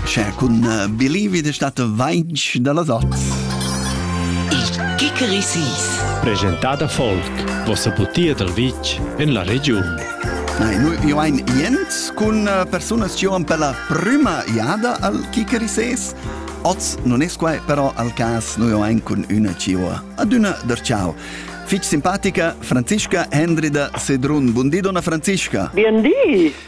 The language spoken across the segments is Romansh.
Sche cun eh, Believe de stato vainch da las ots. Il Kikerisis. Presentada folk, vossa butia dal vitg en la regiun. Nei, nu io ein jent cun eh, persunas che han per la prima jada al Kikerises. Oz non es quai però al cas nu io ein cun üna ciua ad una der ciao. Fich simpatica Franziska Hendrida Sedrun. Buondì, donna Franziska. Buondì.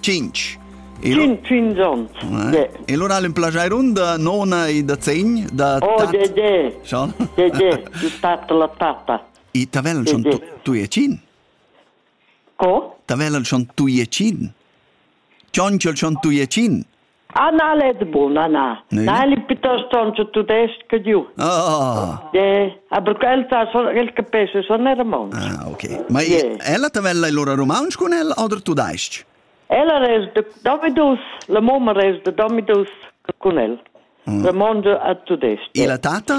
Cinch. Cin, cin gion. E lura l'implajairun da nona e da zegn da Oh, de, de. Schon? De, de. Du tata la tata. I tavellan schon tu e cin? Co? Tavellan schon tu e cin? Cion, ciol schon tu e cin? Anna Ledbun, Anna. Ne? Na, el è piuttosto un tudesco giù. Ah. Yeah. Aber quel sa son el capisce son romansch. Ah, okay. Ma yeah. ella te vella lora romansch con el oder tudesc? Ella res de Domidus, la mamma res de Domidus con el. Mm. Romansch a tudesc. E la tata?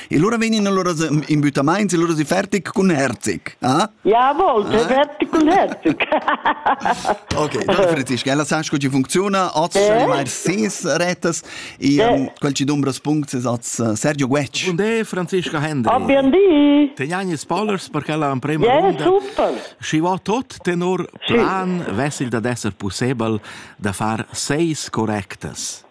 E allora vegnin allora in buttamaints e allora si fertig cun Herzig. Ah? Ja, wollte eh? fertig cun Herzig. ok, da Franziska, ella sa sco ci funziona, oz eh? mai ses retas e eh. um, quel ci dumbras punct es oz uh, Sergio Guetsch. Und de Franziska Hendry. Abbiam di. Te jani spoilers per quella en prima yeah, runda. super. Schi va tot tenor plan vessil da d'esser possibel da far seis correctas.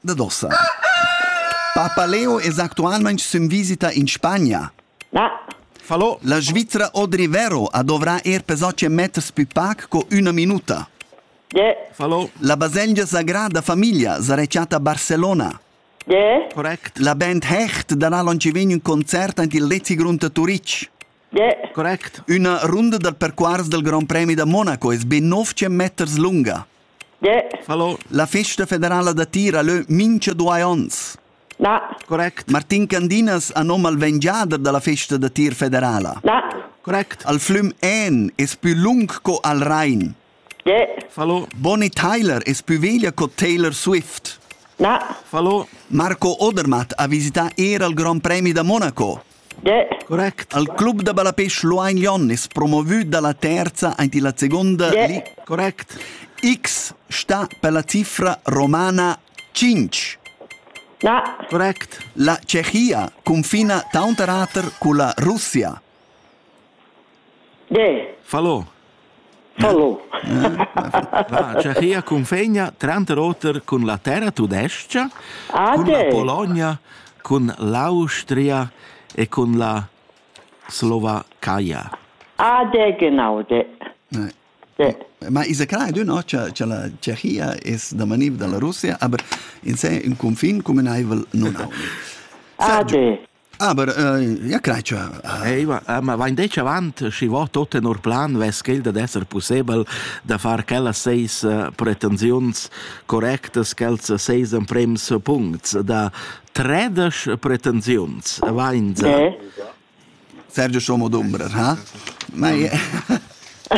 da dossa. Papa Leo es actualmaing sün visita in Spagna. Na. Fallo. La Svizra Audrey Vero a dovrà er per soce meters più pac co una minuta. De. Fallo. La baselgia Sagrada Famiglia sarà a Barcellona. De. Correct. La band Hecht darà l'on ci vegn un concert ant il Lezi Grund a Turic. Correct. Üna runda dal percuors dal Grand Premi da Monaco es be 9 meters lunga. Hallo. La festa federala da tir ha lö mincha duai ons. Na. Correct. Martin Candinas ha nom al vengiader da la festa da tir federala. Na. Correct. Al flüm En es pü lung co al Rhein. Fallo Bonnie Tyler es pü veglia co Taylor Swift. Na. Fallo Marco Odermatt ha visità eir al Grand Premi da Monaco. Correct. Al club da balapêche Luain Jon es promovü da la terza aint illa segonda li. Correct. X sta pella cifra romana 5. Na. Correct. La Cechia cunfina taunterater culla Russia. Falò. Falò. Va, Tschechia cunfegna tranter oter cun la terra tudestga, cun la Bologna, cun l'Austria e cun la Slovacaia. Ah, de, genau, de. De. Ma isa clar ed no cha la Tschechia es da maniv da la Russia, aber in se ün cunfin cumünaivel nun haun. Ah, de. Aber äh, ja crei cha Ei va, eh, ma vain detg avant, schi vo tot tenor plan vess quel dad esser pussebel da far quellas seis eh, pretensiuns correctas, quels seis emprems puncts, da tredesch pretensiuns, vain Eh? Sergio Schomo d'Umbrer, ha? Mei,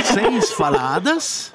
Seis falladas